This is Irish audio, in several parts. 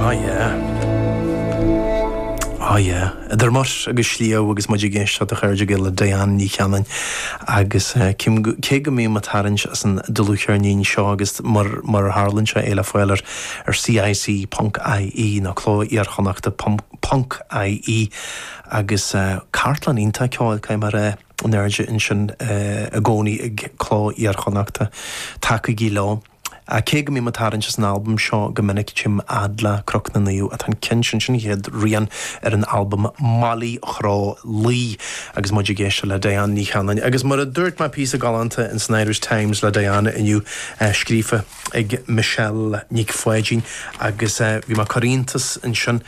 Ah yeah. Ah yeah. Idir Muir agus Sliabh agus muid ag éisteacht a chairde Gael le Diane Ní Chanainn agus eh, cím go- cé go mbím ag tarraingt as an dlúthcheirnín seo agus mar mar a tharlaíonn sé é le fáil ar ar CIC ponc IE nó Cló Iar-Chonnachta pom- ponc IE agus eh, cartlann iontach ceoil cé mar eh, in airde ansin eh, i gcónaí ag Cló Iar-Chonnachta. Tacaigí leo. Ach cé go mbím ag tarraingt as an albam seo go minic, chím Adla, Cnoc na Naomh, atá an ceann sin den chéad rian ar an albam, Mailí Chró Laoi, agus muid ag éisteacht le Diane Ní Chanainn. Agus mar a dúirt mé píosa galánta in san Irish Times le Diane inniu, scríofa ag Michelle Nic Pháidín, agus bhí mé ag cur iontas ansin,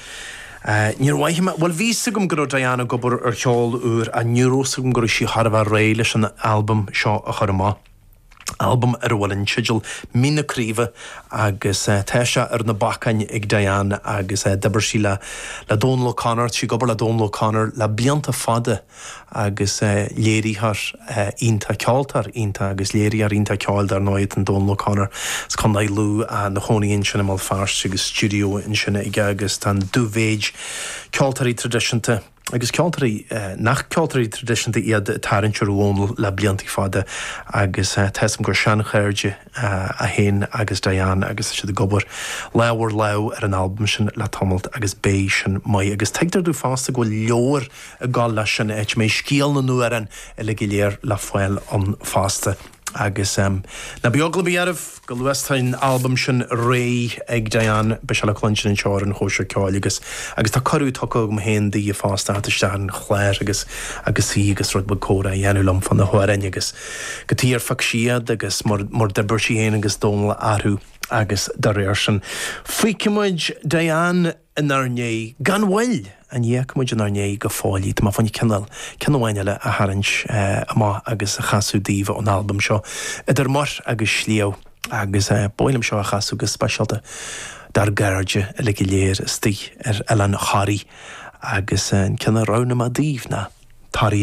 ní raibh mé, bhuel, bhí 's agam go raibh Diane ag obair ar cheol úr, ach ní raibh 's agam go raibh sí chóir a bheith réidh leis an albam seo a chur amach. albam ar a bhfuil an teideal Mín na Craoibhe agus tá sé ar na bacáin ag Diane agus d'oibir sí le le Dónal O'Connor, sí ag obair le Dónal O'Connor le blianta fada agus léirítheoir iontach, ceoltóir iontach agus léiritheoir iontach ceoil dar ndóigh atá in Dónal O'Connor. As Contae Lú ina chónaí ansin i mBéal Feirste agus stiúideo ansin aige agus tá an dú-mhéid ceoltóirí traidisiúnta, agus ceoltóirí nach ceoltóirí traidisiúnta iad ag tarraingt ar Dhónal le blianta fada agus tá fhios agam gur seanchairde é féin agus Diane agus tá siad ag obair lámh ar lámh ar an albam sin le tamalt agus beidh sin maith agus tuigtear domh fosta go bhfuil leabhar ag dul leis sin, áit a mbeidh scéal na n-amhrán uilig go léir le fáil ann fosta. Agus ná bíodh eagla ar bith oraibh, chomh luath is tá an albam sin réidh ag Diane, beidh sé le cluinstin anseo ar an Chóisir Cheoil agus agus tá cuireadh tugtha agam féin di fosta a theacht isteach ar an chlár agus agus í agus rud beag comhrá a dhéanamh liom fá na hamhráin agus cad chuige ar phioc sí iad agus mar mar a d'oibir sí féin agus Dónal orthu agus dá réir sin. Fágfaidh muid Diane! inár ndiaidh gan mhoill! Ní fhágfaidh muid inár ndiaidh go fóill í. Tá mé féin cineál, ceann amháin eile a tharraingt amach agus a chasadh daoibh ón albam seo, Idir Muir agus Sliabh, agus ba mhaith liom seo a chasadh go speisialta dár gcairde uilig go léir istigh ar Oileán Thoraí, agus an ceann a roghnaigh mé daoibh ná Toraigh.